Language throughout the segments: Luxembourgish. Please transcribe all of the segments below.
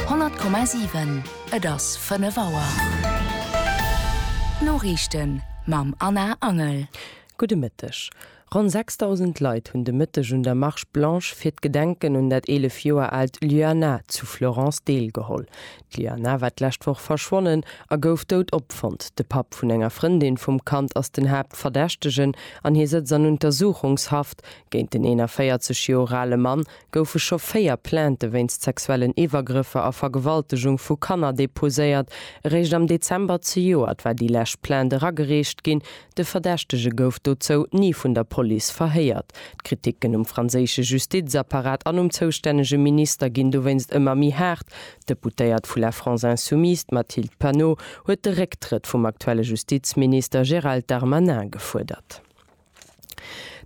100,7 Et ass 5 Auer. D'Noriichten mam Anna Angel. Gudde Mëtteg. Ronn 6.000 Leit hunn de Mëtteg un der Marche blanche fir d'Gedenken un dat 11 Joer aalt Lyana zu Florence deelgeholl. D'Lyana war d'lescht Woch verschwonnen a gouf dout opfonnt. De Papp vun enger Frëndin vum Kand ass den Haaptverdächtegen an hie sëtzt an Untersuchungshaft. Géint den 41 Joer ale Mann goufe scho véier Plainte wéinst sexuellen Iwwergrëffer a Vergewaltegung vu Kanner deposéiert. Eréischt am Dezember zejoert war déi lescht Plainte eragereecht ginn. De Verdächtege gouf dozou ni vun der Police verhéiert. D'Kriticken um franséische Justizapparat an um zoustännege Minister ginn dowéinst ëmmer méi haart. D'Deputéiert vu La France Insoumise, d'Mathilde Panot, huet de Récktrëtt vum aktuelle Justizminister Gérald Darmanin gefuerdert.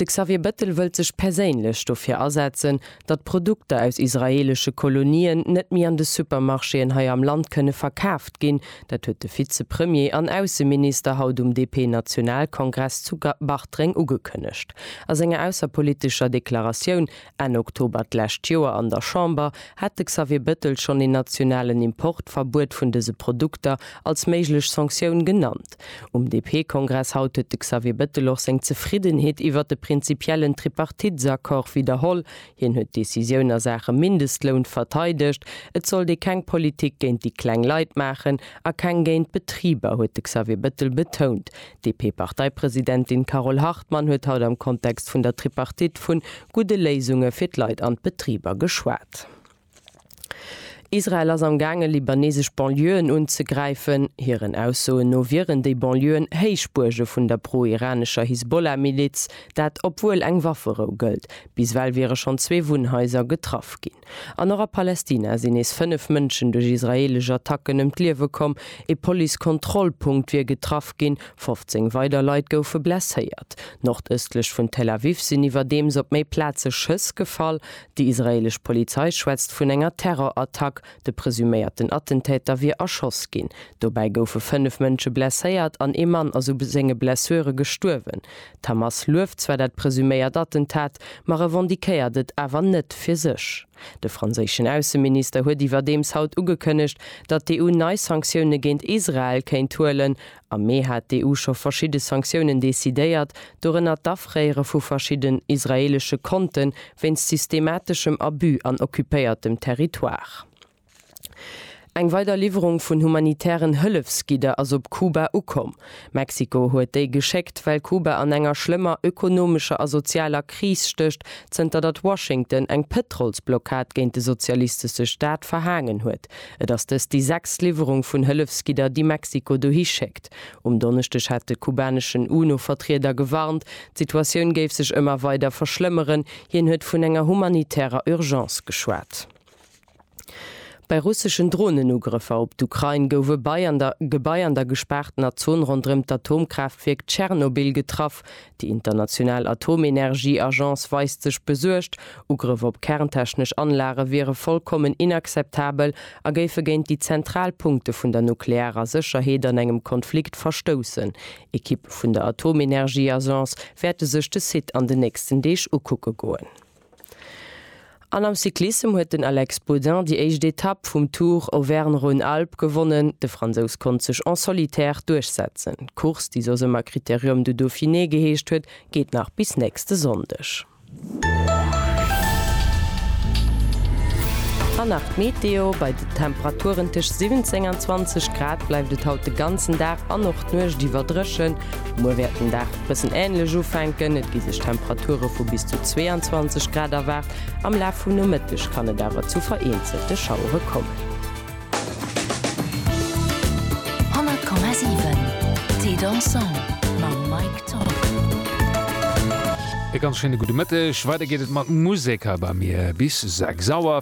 De Xavier Bettel wëllt sech perséinlech dofir asetzen, datt Produkter aus israeelesche Kolonien net méi an de Supermarchéen hei am Land kënne verkaaft ginn. Dat huet de Vizepremier an Ausseminister haut um DP-Nationalkongress zu Bartreng ugekënnegt. A senger ausserpolitescher Deklaratioun Enn Oktober d'lescht Joer an der Chamber hat de Xavier Bettel schonn een nationalen Importverbuet vun dëse Produkter als méiglech Sanktioun genannt. Um DP-Kongress haut huet de Xavier Bettel och seng Zefriddenheet iwwert de prinzipiellen Tripartitesaccord widderholl. Hien huet d'Decisioun a Saache Mindestloun verteidegt. Et sollt ee keng Politik géint déi kleng Leit maachen a keng géint d'Betriber, huet de Xavier Bettel betount. D'DP-Parteipresidentin Carole Hartmann huet haut am Kontext vun der Tripartite vun gudde Léisunge fir d'Leit an d'Betriber geschwat. Israel ass am gaange libanesesch Banlieuen unzegräifen. Hiren Aussoen no wieren déi Banlieuen Héichbuerge vun der pro-iranescher Hisbollah-Miliz. Dat obwuel eng Wafferou gëllt. Bis ewell wiere schonn zwee Wunnhaiser getraff ginn. An och a Palästina sinn nees fënnef Mënschen duerch israeelesch Attacken ëm d'Liewe komm. Ee Police-Kontrollpunkt wier getraff ginn, 15 weider Leit goufe blesséiert. Nordëstlech vun Tel Aviv sinn iwwerdeems op méi Plaze Schëss gefall. Déi israeelesch Polizei schwätzt vun enger Terror-Attack. De presuméierten Attentäter wier erschoss ginn. Dobäi goufe fënnef Mënsche blesséiert an ee Mann ass u senge Blessure gestuerwen. D'Hamas lueft zwar dat presuméiert Attentat, ma revendiquéiert et awer net fir sech. De franséischen Ausseminister huet iwwerdeems haut ugekënnegt, datt d'EU nei Sanktioune géint Israel kéint huelen. Am Mee hat d'EU scho verschidde Sanktiounen decidéiert, dorënner d'Afréiere vu verschidden israeelesche Konte wéinst systemateschem Abus an occupéiertem Territoire. Eng weider Liwwerung vun humanitären Hëllefsgidder ass op Kuba ukomm. Mexiko huet déi geschéckt, well Kuba an enger schlëmmer ökonomescher a sozialer Kris stécht, zënter datt Washington eng Pëtrolsblockad géint de sozialistesche Staat verhaangen huet. Et ass dëst déi sechst Liwwerung vun Hëllefsgidder, déi Mexiko dohi schéckt. Um Donneschdeg hat de kubaneschen UNO-Vertrieder gewarnt, d'Situatioun géif sech ëmmer weider verschlëmmeren. Hien huet vun enger humanitärer Urgence geschwat. Bei russeschen Dronenugrëffer op d'Ukrain gouf e bei an der Gebai an der gespaartener Zon ronderëm d'Atomkraaftwierk Tschernobyl getraff. Déi international Atomenergieagence weist sech besuergt. Ugrëff op kerntechnesch Anlage wiere vollkommen inakzeptabel a géife géint déi zentral Punkte vun der nuklearer Sécherheet an engem Konflikt verstoussen. Ekippe vun der Atomenergieagence wäerte sech de Site an den nächsten Deeg ukucke goen. An am Cyclissem huet den Alex Baudin déi éischt Etapp vum Tour Auvergne-Rhône-Alpes gewonnen. De Fransous konnt sech en solitaire duerchsetzen. D'Course, déi soss ëmmer Critérium du Dauphiné geheescht huet, geet nach bis nächste Sonndeg. An nach d'Meteo, Bei de Temperaturen tëscht 17 an 20 Grad bleift et haut de ganzen Dag an och d'Nuecht iwwer dréchen. Muer wäert den Dag bëssen änlech ufänken, et gi sech Temperature vu bis zu 22 Grad erwaart. Am Laf vum Nomëtteg kann et awer zu vereenzelte Schauere kommen. E ganz schéine gudde Mëtteg. Weider geet et mat Musek hei bei mir bis 6 Auer.